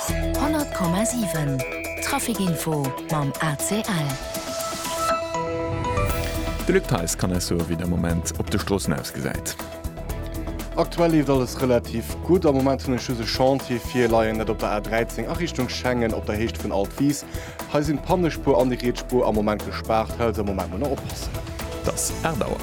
100,7 Traficinfo mam ACL. De Luc Theis kann eis soe wéi de Moment op de Stroossen ausgesäit. Aktuell leeft alles relativ gutt. Am Moment hunn ech just e Chantier virleien, dat op der A 13 a Richtung Schengen op der Héicht vun Altwis. Hei sinn d'Pannespuer an déi riets Spuer am Moment gespaart, hei also am Moment muss nach oppassen. Dass 8 Auer.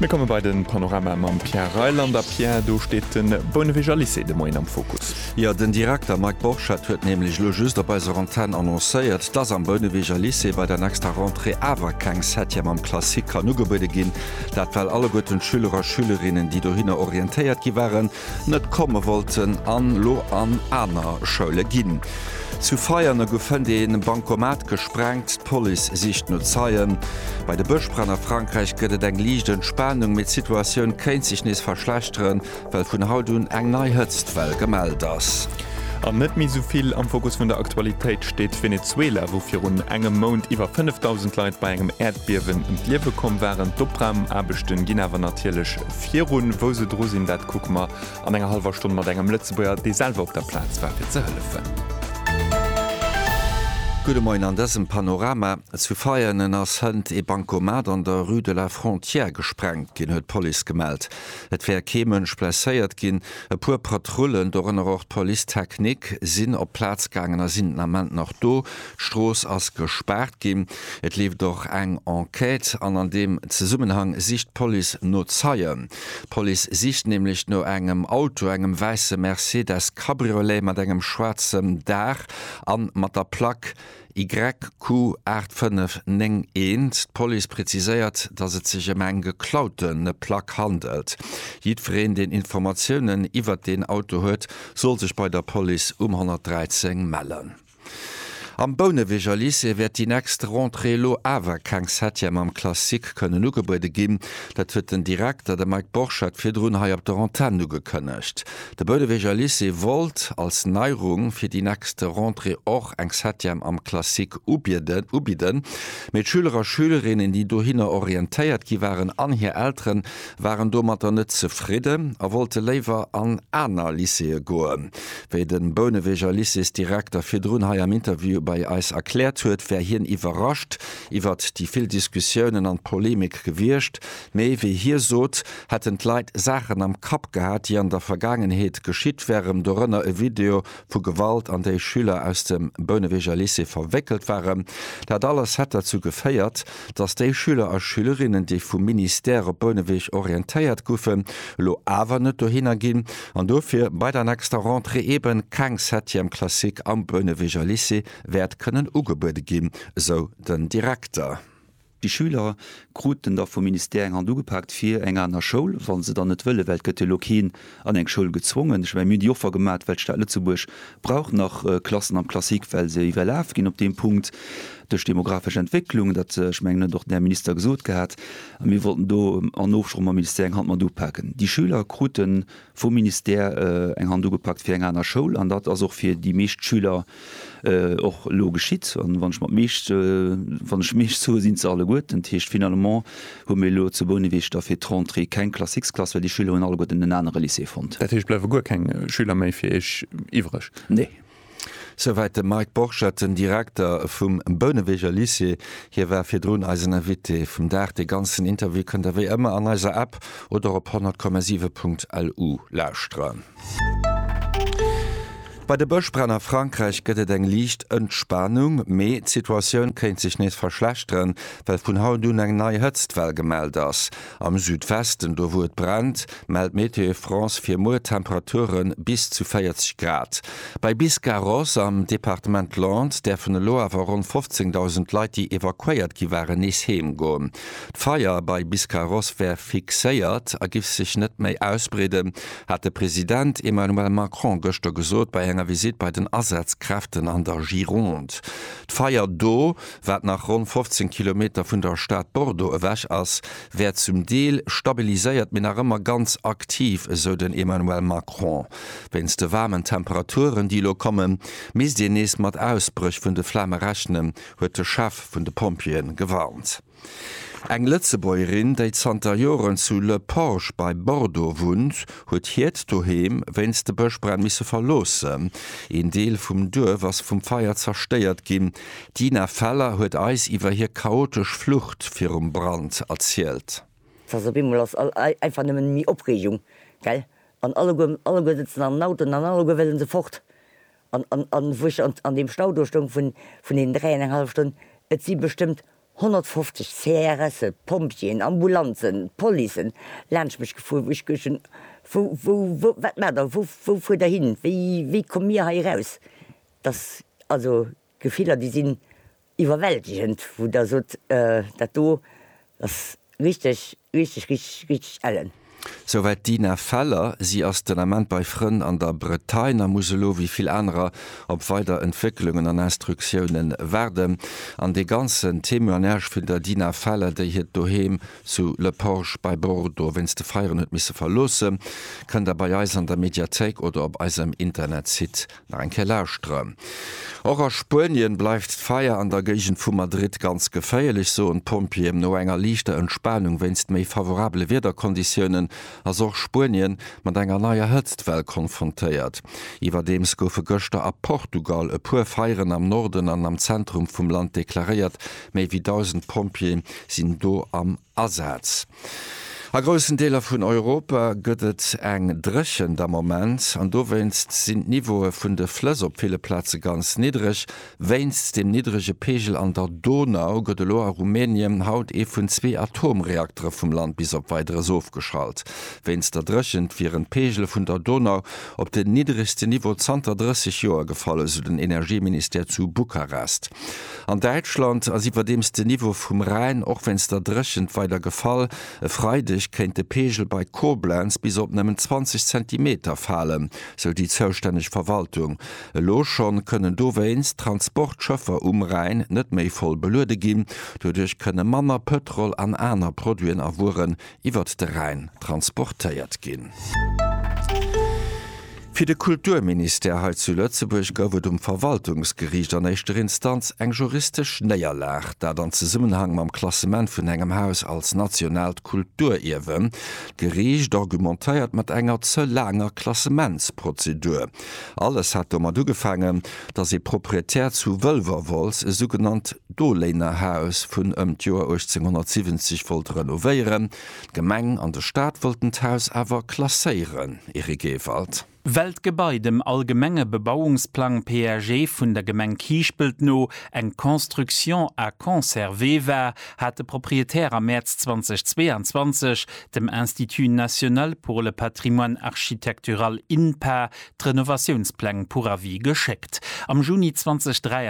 Mir komme bei den Panorama mam Pierre Reyland. A Pierre, do steet de Bouneweger Lycée de Moien am Fokus. Jo, den Direkter Mike Borchert huet nämlech elo just op eiser Antenn annoncéiert, dass am Bouneweger Lycée bei der nächster Rentrée awer keng Septième am Classique kann ugebuede ginn. Dat well alleguerten d'Schüler a Schülerinnen, déi dohinner orientéiert gi waren, net komme wollten an lo an aner Schoule ginn. Zu Veianen gouf fënnt ee Bankomat gesprengt, d'Police sicht no Zeien. Bei de Bëschbränn a Frankräich gëtt et eng liicht Entspanung, mee d'Situatioun kéint sech nees verschlechteren, well vun haut un eng nei Hëtztwell gemellt ass. An net méi esou vill am Fokus vun der Aktualitéit steet Venezuela, wou virun engem Mount iwwer 5.000 Leit bei engem Äerdbiewen ëm d'Liewe komm waren. D'Opraum-Aarbechte ginn awer natierlech. virun, wou se dru sinn, dat kucke mer an enger hallwer Stonn mat engem Lëtzebuerger, dee selwer op der Plaz war, fir ze hëllefen. Gudde Moien, an dësem Panorama zu Veianen ass hënt ee Bancomat an der Rue de la Frontière gesprengt ginn, huet d'Police gemellt. Et wär kee Mënsch blesséiert ginn. E puer Patrullen, dorënner och d'Police technique, sinn op d'Plaz gaangen a sinn den Ament nach do. D'Strooss ass gespaart ginn. Et leeft och eng Enquête an an deem Zesummenhang sicht d'Police no Zeien. D'Police sicht nämlech no engem Auto, engem wäisse Mercedes Cabriolet mat engem schwaarzem Daach a mat der Plack YQ 8591. D'Police präziséiert, datt et sech ëm eng geklaute Plack handelt. Jiddwereen, deen Informatiounen iwwert deen Auto huet, soll sech bei der Police um 113 mellen. Am Bouneweger Lycée wäert déi nächst Rentrée elo awer keng Septième am Classique kënnen ugebuede ginn. Dat huet den Direkter, de Mike Borchert, virdrun hei op der Antenn ugekënnegt. De Bouneweger Lycée wollt als Neierung fir déi nächst Rentrée och eng Septième am Classique ubidden, mee d'Schüler a Schülerinnen, déi dohinner orientéiert gi waren, an hir Eltere waren domatter net zefridden a wollte léiwer an aner Lycéeë goen. Wéi de Bouneweger Lycéesdirekter virdrun hei am Interview bei eis erkläert huet, wär hien iwwerrascht iwwert déi vill Diskussiounen an Polemik gewiescht, mee wéi hie sot, hätten d'Leit Saachen am Kapp gehat, déi an der Vergaangenheet geschitt wären, dorënner e Video vu Gewalt, an déi Schüler aus dem Bouneweger Lycée verwéckelt waren. Dat alles hätt derzou geféiert, dass déi Schüler a Schülerinnen, déi vum Ministère op Bouneweg orientéiert goufen, elo awer net dohinner ginn an dofir bei der nächster Rentrée eebe keng Septième classique am Bouneweger Lycée wäert kënnen ugebuede ginn, esou den Direkter. Déi Schüler kruten da vum Ministère eng Hand ugepaakt fir eng aner Schoul, wa se dann net wëllen, well et gëtt jo elo keen an eng Schoul gezwongen. Ech mein mir déi Offer gemat, well d'Stad Lëtzebuerg brauch nach Klassen am Classique, well se iwwerlaf ginn op deem Punkt duerch demographesch Entwécklung. Dat, ech mengen, huet och den Här Minister gesot gehat. A mir wollten do an Ofsproch mam Ministère eng Hand mat upaken. Déi Schüler krute vum Ministère eng Hand ugepakt fir eng aner Schoul an dat ass och fir déi meescht Schüler och elo geschitt an wann ech mat meescht wann ech meescht soe sinn se alleguer ten, dat heescht finalement hu mir elo zu Bouneweg da fir d'Rentrée keng Classxklass well déi Schüler hunn alleguerten en anere Lycée fonnt. Dat heescht bleiwe guer keng Schüler méi fir Iech iwwreg? Nee. Souwäit de Mike Borchert, den Direkter vum Bouneweger Lycée. Hie war virdrun eisen Invité vum Dag. Dee ganzen Interview kënnt der wéi ëmmer an eiser App oder op 100,7.lu lauschteren. Bei de Bëschbränn a Frankräich gëtt et eng liicht Entspanung, mee d'Situatioun kéint sech nees verschlechteren, well vun haut un eng nei Hëtztwell gemellt ass. Am Südwesten, do wou et brennt, mellt Météo France fir muer Temperature bis zu 40 Grad. Bei Biscarrosse am Departement Landes däerfen elo awer ronn 15.000 Leit, déi evakuéiert gi waren, nees heem goen. D'Feier bei Biscarrosse wär fixéiert a giff sech net méi ausbreeden, hat de President Emmanuel Macron gëschter gesot bei enger Visitt bei den Asazkräften an der Gironde. D'Feier do, wat nach ronn 15 Kilometer vun der Stad Bordeaux ewech ass, wär zum Deel stabiliséiert, mee nach ëmmer ganz aktiv, esou den Emmanuel Macron. Wéinst de waarmen Temperaturen, déi elo kommen, misst een nees mat Ausbréch vun de Flame rechnen, huet de Chef vun de Pompjeeën gewarnt. Eng Lëtzebuergerin, déi zanter Joren zu Le Porge bei Bordeaux wunnt, huet hiert Doheem wéinst de Bëschbränn misse verloossen. Een Deel vum Duerf ass vum Feier zerstéiert ginn. D'Ina Feller huet eis iwwer hir chaotesch Flucht virum Brand erzielt. Tja, op eemol ass einfach nëmmen méi Opreegung, gell? An alleguer, alleguer sëtzen an den Autoen an alleguer wëlle se fort. An wou ech an deem Stau do stoung vun deenen dräienenghallef Stonn, et si bestëmmt 150 CRSe, Pompjeeën, Ambulanzen, Policen laanscht mech gefuer, wou ech geduecht hunn, Wou, wou, wat maacht Der? Wou fuert Der hin? Wéi, wéi komme mir hei eraus? Dass also Gefiller, déi sinn Iwwerwältegend wou der sot dat do ass richteg richteg richteg richteg ellen. Souwäit d'Ina Feller. Si ass den Ament bei Frënn an der Bretagne a muss elo wéi vill anerer op weider Entwécklungen an Instruktioune waarden. An dee ganzen Témoignage vun der Dina Feller, déi hiert Doheem zu Le Porge bei Bordeaux wéinst de Feieren huet misse verloossen, kënnt der bei eis an der Mediathéik oder op eisem Internetsite Nach eng Kéier lauschteren. Och a Spuenien bleift d'Feier an der Géigend vu Madrid ganz geféierlech, soen d'Pompjeeën. No enger liichter Entspanung wéinst méi favorabele Wiederkonditiounen ass och Spuenien mat enger neier Hëtztwell konfrontéiert. Iwwerdeems goufe gëschter a Portugal e puer Feieren am Norden an am Zentrum vum Land deklaréiert. Méi wéi 1.000 Pompjeeë sinn do am. Asaz. A groussen Deeler vun Europa gëtt et eng Dréchent am Moment an dowéinst sinn d'Niveaue vun de Flëss op ville Plaze ganz niddereg. Wéinst dem niddrege Peegel an der Donau gëtt elo a Rumänien haut ee vun zwee Atomreaktere vum Land bis op Weideres ofgeschalt. Wéinst der Dréchent wieren d'Peegele vun der Donau op den nidderegsten Niveau zanter 30 Joer gefall, esou den Energieministère zu Bukarest. An Däitschland ass iwwerdeems den Niveau vum Rhäin, och wéinst der Dréchent, weider gefall. E Freideg kéint de Peegel bei Koblenz bis op nëmmen 20 Zentimeter falen, sou déi zoustänneg Verwaltung. Elo schonn kënnen dowéinst Transportschëffer um Rhäin net méi voll beluede ginn. Doduerch kënne manner Pëtrol an aner Produiten a Wueren iwwert de Rhäin transportéiert ginn. Fir de Kulturministère hei zu Lëtzebuerg gouf et um Verwaltungsgeriicht an éischter Instanz eng juristesch Néierlag, dat an Zesummenhang mam Klassement vun engem Haus als nationaalt Kulturierwen. D'Geriicht argumentéiert mat enger ze laanger Klassementsprozedur. Alles hat domat ugefaangen, datt ee Proprietär zu Wëlwerwolz e sougenannt Doléinerhaus vun ëm d'Joer 1870 wollt renovéieren. D'Gemeng an de Staat wollten d'Haus awer klasséieren, Eric Ewald. Well d'Gebai dem allgemenge Bebauungsplang, PAG, vun der Gemeng Kiischpelt no eng Construction à conserver war, hat de Proprietär am Mäerz 2022 dem Institut national pour le patrimoine architectural, INPA, d'Renovatiounspläng pour avis geschéckt. Am Juni 2023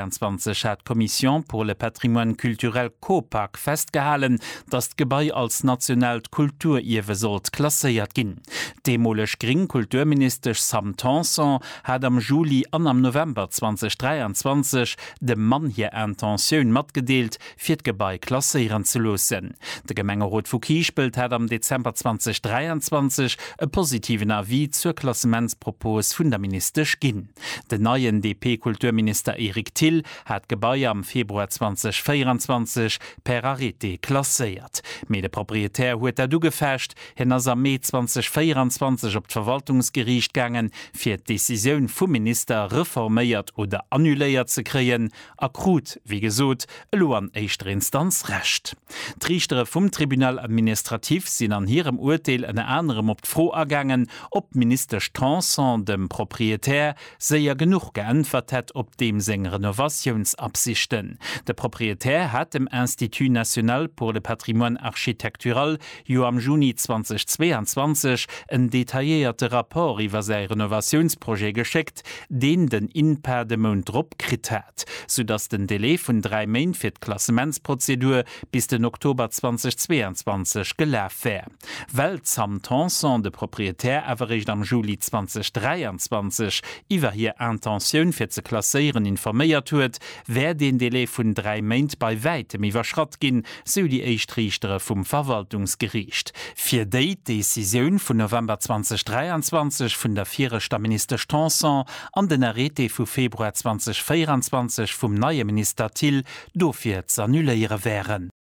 hat d'Commission pour le patrimoine culturel, Copac, festgehalen, datt d'Gebai als nationaalt Kulturierwe sollt klasséiert ginn. D'deemoleg gréng Kulturministesch Sam Tanson hat am Juli an am November 2023 dem Mann hir Intentioun matgedeelt, fir d'Gebai klasséieren ze loossen. De Gemengerot vu Kiischpelt hat am Dezember 2023 e positiven Avis zur Klassementspropos vun der Ministesch ginn. Den neien DP-Kulturminister Eric Thill hat d'Gebai am Februar 2024 per Arrêté klasséiert. Mee de Proprietär huet dat ugefecht. Hien ass am Mee 2024 op d'Verwaltungsgeriicht gaangen, fir d'Decisioun vum Minister reforméiert oder annuléiert ze kréien. a krut, wéi gesot, elo an éischter Instanz Recht. D'Riichtere vum Tribunal administratif sinn an hirem Urteel ënner anerem op d'Fro agaangen, ob d'Ministesch Tanson dem Proprietär séier genuch geäntwert hätt op deem seng Renovatiounsabsichten. De Proprietär hat dem Institut national pour le patrimoine architectural jo am Juni 2022 en detailléierte Rapport iwwer säi Renovatiounsprojet geschéckt, deen den INPA de Mount drop kritt hat, soudass den Delai vun dräi Méint fir d'Klassementsprozedur bis den Oktober 2022 gelaf wär, well d'Sam Tanson de Proprietär awer réischt am Juli 2023 iwwer hir Intentioun fir ze klasséieren informéiert huet, wär deen Delai vun dräi Méint bei wäitem iwwerschratt ginn. sou déi éischt Riichtere vum Verwaltungsgeriicht. Fir déi d'Decisioun vun November 2023 vun der viregter Ministesch Tanson an den Arrêté vu Februar 2024 vum neie Minister Thill dofir z'annuléiere wären.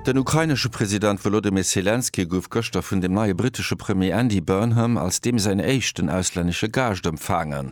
Den ukrainesche President Wolodymyr Selenskyj gouf gëschter vun dem neie brittesche Premier Andy Burnham als deem säin éischten auslännesche Gaascht empfaangen.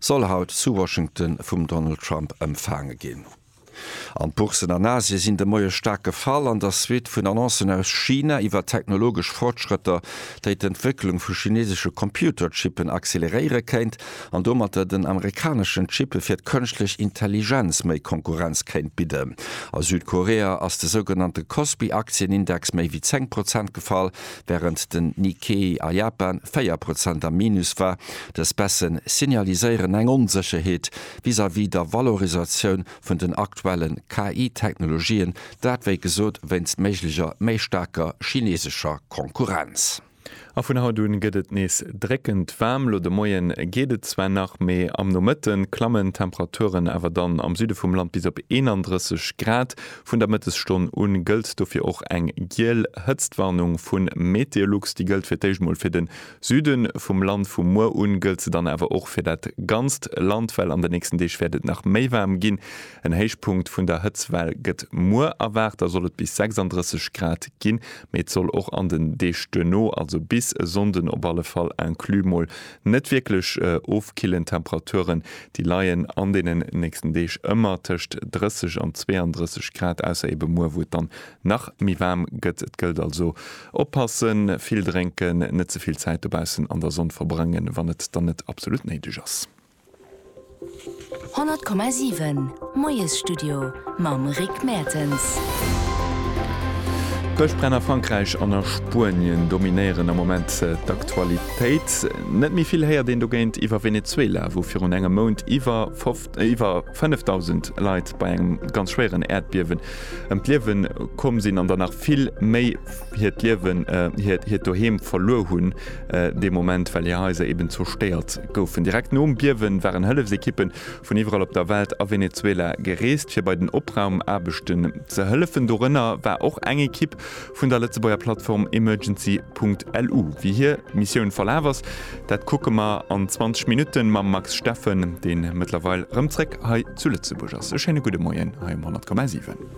soll haut zu Washington vum Donald Trump empfaange ginn. An d'Bourssen an Asie sinn de Moie staark gefall an der Suite vun Annoncen aus China iwwer technologesch Fortschrëtter, déi d'Entwécklung vu chineesesche Computerchippen acceleréiere kéint an domatter den amerikaneschen Chippe fir d'Kënschtlech Intelligenz méi Konkurrenz kéint bidden. A Südkorea ass de sougenannte Kospi-Aktienindex méi wéi 10 Prozent gefall. wärend den Nikkei a Japan 4 Prozent am Minus war. Dës Baisse signaliséieren eng Onsécherheet vis-à-vis der Valorisatioun vun den aktuelle KI-Technologien, dat wéi gesot wéinst méiglecher méi staarker chinesescher Konkurrenz. A vun haut un gëtt et nees dréckend waarm. Elo de Moien geet et zwar nach, mee am Nomëtte klammen d'Temperaturen awer dann am Süde vum Land bis op 31 Grad. Vun der Mëttesstonn u gëllt dofir och eng giel Hëtztwarnung vu Meteolux. Déi gëllt fir d'éischt mol fir de Süde vum Land. Vu muer u gëllt se dann awer och fir dat ganzt Land, well an de nächsten Deeg wäert et nach méi waarm ginn. En Héichpunkt vun der Hëtztwell gëtt muer erwaart, da soll et bis 36 Grad ginn. Mee et soll och an den Deeg duerno, also bis e Sonnden op alle Fall inclus, mol Net wierklech ofkillend Temperaturen, déi leien an deenen nächsten Deeg ëmmer tëscht 30 an 32 Grad, ausser ebe muer, wou et dann nach méi waarm gëtt. Et gëllt also oppassen, vill drénken, net ze vill Zäit dobaussen an der Sonn verbréngen, wann et dann net absolut néideg ass. 100,7 Moiesstudio mam Rick Mertens. D'Bëschbränn a Frankräich an a Spuenien dominéieren am Moment d'Aktualitéit. Net méi vill héiert een dogéint iwwer Venezuela, wou virun engem Mount iwwer 5.000 Leit bei engem ganz schwéieren Äerdbiewen ëm d'Liewe komm sinn an der nach vill méi hiert Doheem verluer hunn, dee Moment, well hir Haiser eben zerstéiert goufen. Direkt nom Biewen waren Hëllefsekippe vun iwwerall op der Welt a Venezuela gereest fir bei den Opraumaarbechten ze hëllefen. Dorënner war och eng Ekipp vun der Lëtzebuerger Plattform Emergency.lu. Wéi hir Missioun verlaf ass, dat kucke mer an 20 Minutten mam Max Steffen, deen mëttlerweil rëm zréck hei zu Lëtzebuerg ass. E schéine gudde Moien hei um 100,7.